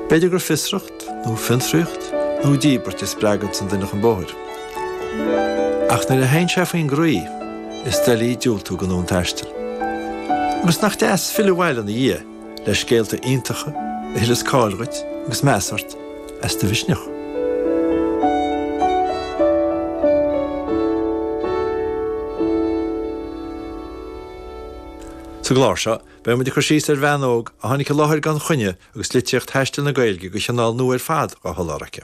B'fhéidir gur fiosracht, nó fiontraíocht, nó díbirt a spreaganns an duine chun bóthair. Ach nuair a théann sé faoin gcroí, is doiligh diúltú don fhonn taistil. Agus nach deas filleadh abhaile ina dhiaidh le scéalta iontacha a thuilleas cáil dhuit agus meas ort as do mhisneach. Sa gclár seo, Beidh muid ag cur síos ar bhean óg a tháinig i láthair gan choinne agus litríocht thaistil na Gaeilge de chineál nua ar fad á sholáthar aici.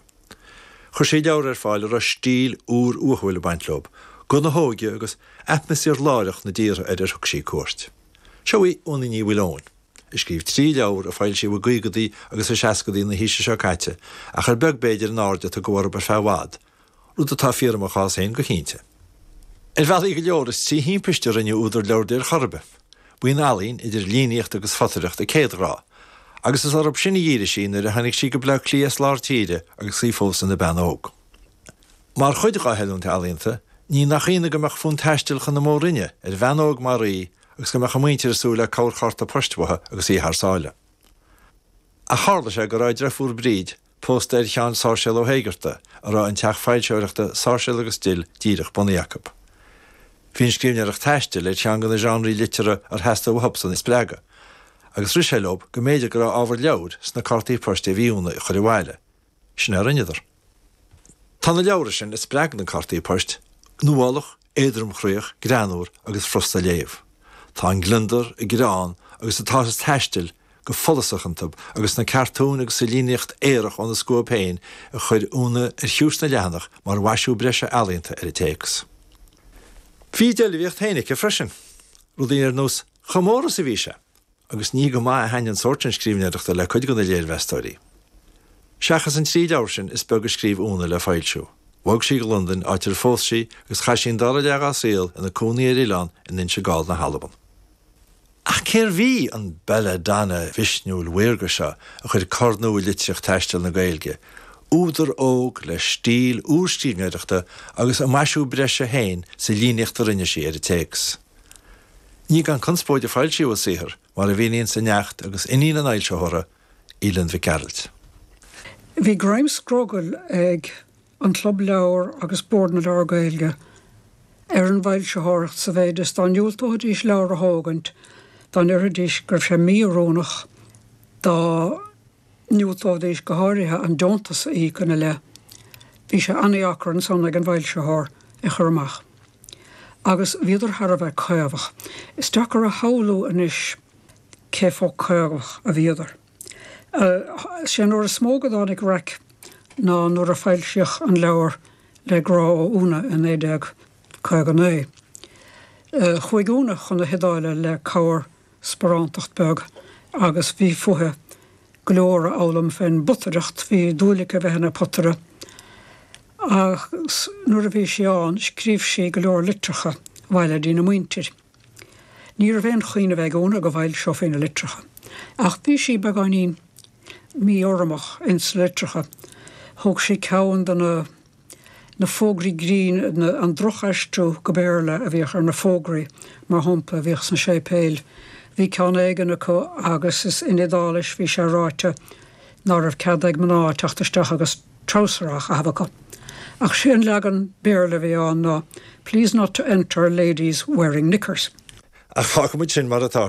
Chuir sí leabhra ar fáil a raibh stíl úr uathúil ag baint leo, guth na hóige agus atmaisféar láithreach na dtíortha ar ar thug sí cuairt. Seo í Úna Ní Mhaoileoin, a scríobh trí leabhar a foilsíodh i gcaogaidí agus i seascaidí na haoise seo caite ach ar beag b'fhéidir an aird a tugadh orthub ar feadh i bhfad, rud atá fíor i mo chás féin go cinnte. Ar bhealaí go leor, is trí thimpist a rinneadh údar leabhar di ar chor ar bith. Ba í an ealaín, idir líníocht agus photaireacht, a céadghrá, agus is orthu sin a dhírigh sí nuair a tháinig sí go Baile Átha Cliath as lár tíre agus í fós ina bean óg. Mar chuid dá hoiliúint ealaíonta, ní nach ionadh go mbeadh fonn taistil chun na Mór-Roinne ar bhean óg mar í agus go mbeadh a muintir ag súil le corrchárta poist uaithi agus í thar sáile. Ach tharla sé go raibh a dreifúr Bríd, pósta ar Sheán Sáirséal Ó hÉigeartaigh, a raibh an teach foilsitheoireachta Sáirséal agus Dill díreach bunaithe acu. Bhí an scríbhneoireacht taistil, ar cheann de na seánraí liteartha ar theastaigh uathubsan a spreagadh, agus rith sé leob go mb'fhéidir go raibh ábhar leabhair sna cártaí poist a bhí Úna ag chur abhaile. Sin é a rinneadar. Tá na leabhra sin a spreag na cártaí poist nuálach, éadromchroíoch, greannmhar agus furasta a léamh. Tá an gliondar, an greann agus an t-áthas taistil go follasach iontu agus sna cartúin agus sa líníocht aorach óna scuab féin a chuir Úna ar chiumhais na leathanach mar mhaisiú breise ealaíonta ar an téacs. Bhí a deilbhíocht féin aici freisin. Rudaí ar nós chomh mór is a bhí sé. agus ní go maith a thaitin an sórt sin scríbhneoireachta le cuid de na léirmheastóirí. Seachas an trí leabhar sin, is beag a scríobh Úna le foilsiú. Bhog sí go Londain, áit ar phós sí, agus chaith sí an dara leath dá saol ina cónaí ar oileán in Inse Gall na hAlban. Ach cérbh í an bella donna mhisniúil mhaorga seo a chuir cor nua i litríocht taistil na Gaeilge, údar óg le stíl úr scríbhneoireachta agus a maisiú breise féin sa líníocht a rinne sí ar an téacs? Ní gan conspóid a foilsíodh a saothar, mar a mhíníonns a neacht agus iníon an fhoilsitheora, Aoileann Mhic Gearailt. Bhí greim scrogaill ag An Club Leabhar agus Bord na Leabhar Gaeilge ar an bhfoilsitheoireacht sa mhéid is dá ndiúltóidís leabhar a thógaint dá ndéarfaidís go raibh sé mí-oiriúnach dá Dhiúltóidís go háirithe an deontas a íoc ina leith. Bhí sé an-deacair ansan ag an bhfoilsitheoir é a chur amach. Agus bhíodar thar a bheith coimeádach. Is deacair a shamhlú anois cé chomh coimeádach a bhíodar. Sé an uair is mó go dtáinig raic ná nuair a foilsíodh an leabhar Le grá ó Úna i 1959. Chuaigh Úna chun na hIodáile le cabhair sparántacht beag agus bhí fúithi go leor a fhoghlaim fé'n bpotaireacht. Bhí dúil aici a bheith ina potaire agus nuair a bhí sí ann scríobh sí go leor litreacha abhaile dtína muintir. Ní raibh aon chuimhneamh ag Úna go bhfoilseofaí na litreacha ach bhí sí beagáinín mí-urramach ins na litreacha. Thug sí ceann do na. na fógraí grinn, an drochaistriú go Béarla a bhíodh ar na fógraí, mar shampla, a bhíodh sna séipéil. Bhí ceann éigin acu agus is in Iodáilis a bhí sé ráite ná raibh cead ag mná teacht isteach agus treabhsar á chaitheamh acu. Ach sé an leagan Béarla a bhí ann ná Please not to enter, ladies, wearing knickers. Ach fágfaimid sin mar atá.